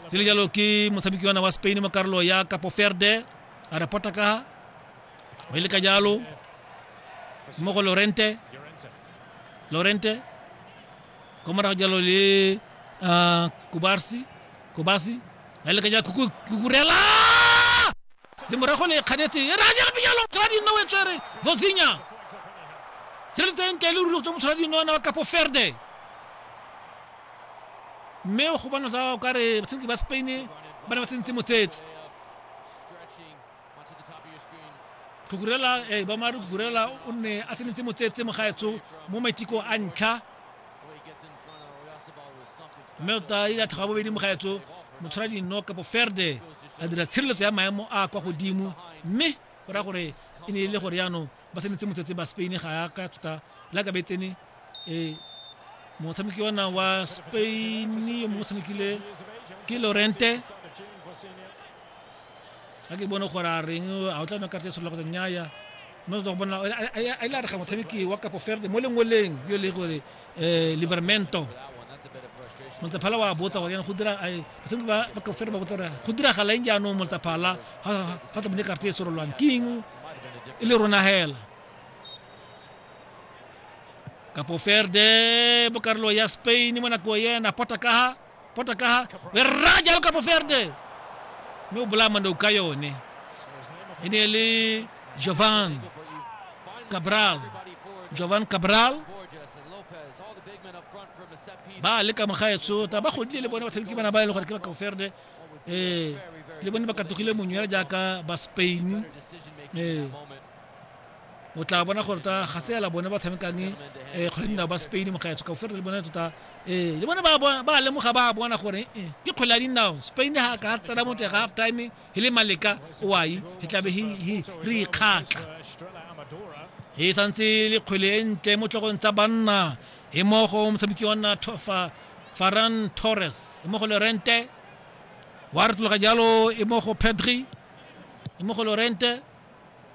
se le jalo ke motshameki wana wa spain mo karolo ya kapo ferde a re pota ka o e le ka jalo mo go lorente lorente ko morago jalo le ah, kubarsi kubasi a e le ka jalo Kuku- kukurela le morago le kganetse e ranya gape jalo motlhola dinno o e tswere vosinya se le tseng ke le ruri go tswa motlhola dinno wana wa kapo ferde mme go bona tsa o kare batshameki ba spain ba ne ba tsentse motsetse kukurela e eh, ba mare kukurela o ne a tsenetse motsetse mogaetso mo maiteko a ntlha mme o ta ile a tlhoga bobedi mogaetso motshwara dino kapo ferde a dira tshireletso ya maemo a kwa godimo mme go raya gore e ne e le gore jaanong ba tsenetse motsetse ba spain ga ya ka tota le ka be tsene um motshameki ona wa spain yo mongwe tshamekile ke lorente ga ke bone gore a reng a o tla nna karate solola kgotsa nnyaya mme o tla go bona a ile a re ga motshameki wa kapo ferde mo lengweleng yo le gore eh, libermento motsaphala wa botsa gore yana go dira basadi ba ba kaofela ba botsa gore go diragala eng jaanong motsaphala ga tsa bone karate e sorolwang ke eng e le rona hela kapo ferde bokarolo ya spain mo nako yena pota kaha pota ka ha o e raya jalo ka boferde mme o bolaya mandau ka yone e ne le jovan cabral jovan cabral ba le ka mogaetso ta ba godile le bone ba tshameki bana ba e le gore ke ba kaoferde um eh, le bone ba katogile monyela jaaka ba spain um eh, o tla bona gore tota ga se yala bone ba tshamekang um kgwele dinao ba spain mogaetsho ka ofere le bone tota ee le bone ba lemoga ba bona gore ke kgwele ya dinao spain ga ka tsena mo teng ga half time e le maleka oai e tlabe re ikgatla e santse le kgwele e ntle mo tlogong tsa banna e mo go motshameki wa nna tofa faran torres e mo go lorente wa retologa jalo e mo go pedri e mo go lorente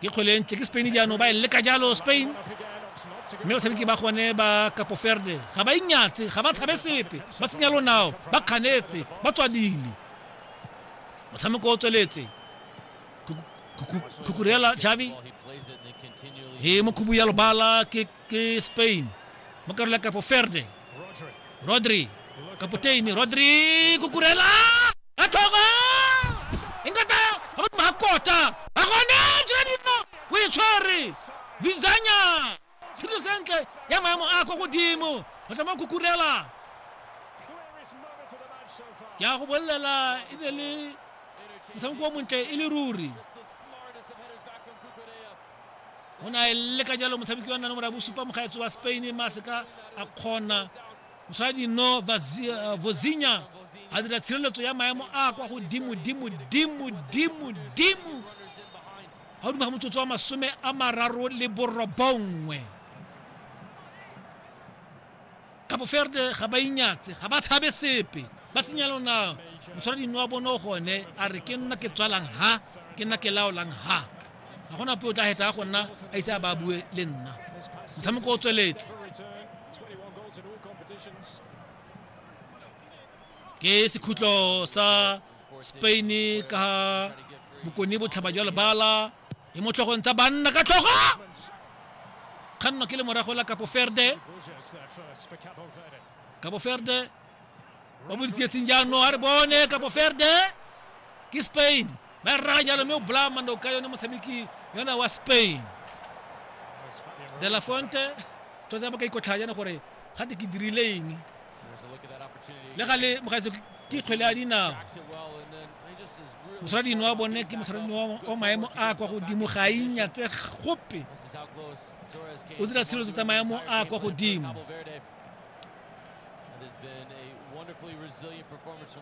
ke kgwele e ntle ke spain jaanong ba e leka jalo spain mme batshameki ba gone ba kapoferde ga ba inyatse ga ba tshabe sepe ba senya lonao ba kganetse ba tswadile motshameko o tsweletse kukurela javi e mokhubu ya lobala ke ke spain mo karolo ya kapo ferde rodri kapoteini rodri kukurela ka tlhogo inkata a godimo ga kota a gone tsela dino o e tshwere vizanya tshilo sentle ya maemo a kwa godimo go tla mo kukurela ke a go bolelela e ne le motshameko o montle e le ruri o ne a e leka jalo motshameki wa nna nomoro ya bosupa mogaetso wa spain ma seka a kgona mosaladi no eh, vozinya a dira tshireletso ya maemo a kwa godimo dimo dimo dimo dimo ga o dima ga motsotso wa masome a mararo le borobongwe Cabo Verde ga ba inyatse ga ba tshabe sepe ba tsenya lona motshwarading wa bone o gone a re ke nna ke tswalang ha ke nna ke laolang ha ga gona puo tla heta go nna a ise a ba bue le nna motshameko o tsweletse ke sekhutlo sa spain ka bokone botlhaba jwa lebala e mo tlhogong tsa banna ka tlhogo kganno ke le morago la capo verde capo verde ba boditsetseng jaanong a re bone capo verde ke spain ba e rraga jalo mme o bolaya mando ka yone motshameki yona wa spain de la fonte tota ba ka ikotlhaya jana gore gate ke dirile eng le gale mogaetso ke kgwele ya dinao mosaradino wa bone ke mosaradino wa maemo a kwa godimo ga inya tse gope o dira tshireletso tsa maemo a kwa godimo